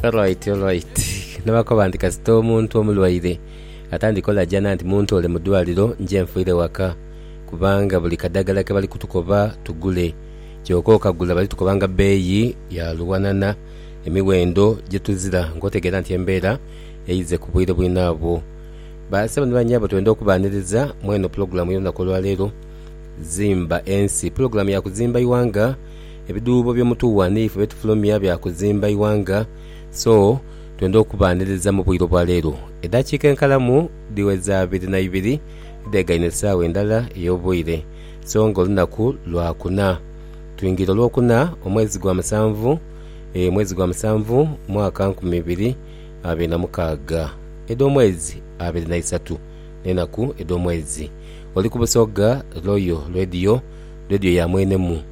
Alright, alright. Nabakoba nti kasita omuntu omulwaire atandika olajana nti muntoole mu dwaliro nje nfiire waka kubanga buli kadagala kebali kutukoba tugule kyoka okagula bali tukoba nga beeyi ya luwanana emiwendo gyetuzira nga otegeera nti embeera eize ku bwire bwinabwo. Ba sebo ni banyabo twenda okubaniriza mweno pulogulamu y'olunaku olwaleero Zimba Ensi. Pulogulamu ya kuzimba iwanga. Ebidhuubo by'omutuwa n'ife byetufulumya bya kuzimba ighanga, so twenda okubaaniriza mu bwire obwa leero. Edaakiika enkalamu dhiweza abiri na ibiri dhegaine esaawa endala ey'obwire, so nga olunaku lwa kuna. Twingira Olwokuna, omwezi gwa musanvu, mwezi gwa musanvu, mwaka nkumi ibiri abiri na mukaaga. Edh'omwezi abiri na isatu n'enaku edh'omwezi. Oli ku Busoga Royal Radio, Radio ya mwenemu.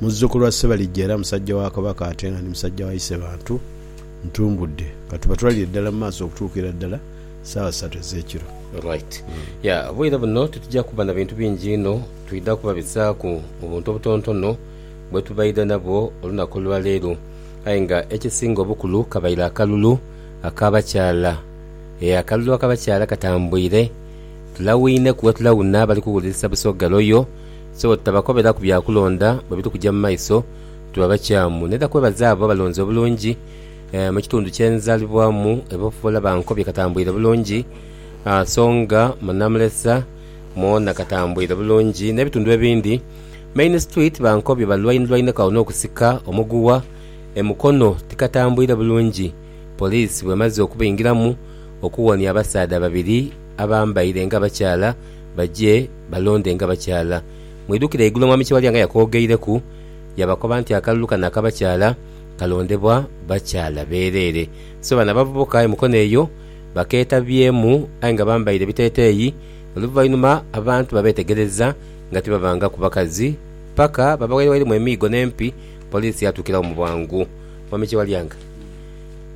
Muzzukulu wa Ssebalijja era musajja wa Kabaka ate nga ni musajja wa Isebantu, ntumbudde. Ka tubatwalire ddala mu maaso okutuukira ddala saawa ssatu ez'ekiro. Right. Ya, obwire buno titujja kuba na bintu bingi inho, twidha kubabisaaku mu buntu obutontono bwe tubaidha nabwo olunaku lwa leero. Aye nga ekisinga obukulu kabaire akalulu ak'abakyala. Ee, akalulu ak'abakyala katambwire. Tulawinheku bwe tulawuna abali kuwulirisa Busoga Royal. So bwe tutabakoberaku bya kulonda bwe biri kuja mu maiso, tuba bakyamu. N'era kwebaza abo abalonzi obulungi mu kitundu kye nzaalibwamu ebafuula ba nkobi katambwire bulungi, so nga mu Namulesa mwona katambwire bulungi n'ebitundu ebindi. Main Street ba nkobi balwainirwaineka agho n'okusika omuguwa e Mukono tikatambwire bulungi poliisi bw'emaze okubaingiramu okuwonia abasaadha babiri abambaire ng'abakyala baje Balonde nga bakyala. Mwidhukire eigulu Omwami kye Walyanga yakoogeireku, yaabakoba nti akalulu kano aka bakyala kalondebwa bakyala beereere. So bano abavubuka e Mukono eyo bakeetabyemu aye nga bambaire biteeteeyi. Oluvainuma abantu babeetegereza nga tibavangaku bakazi paka babawaire wairemu emiigo n'empi. Poliisi yaatuukiragho mu bwangu. Mwami Kyewalyanga.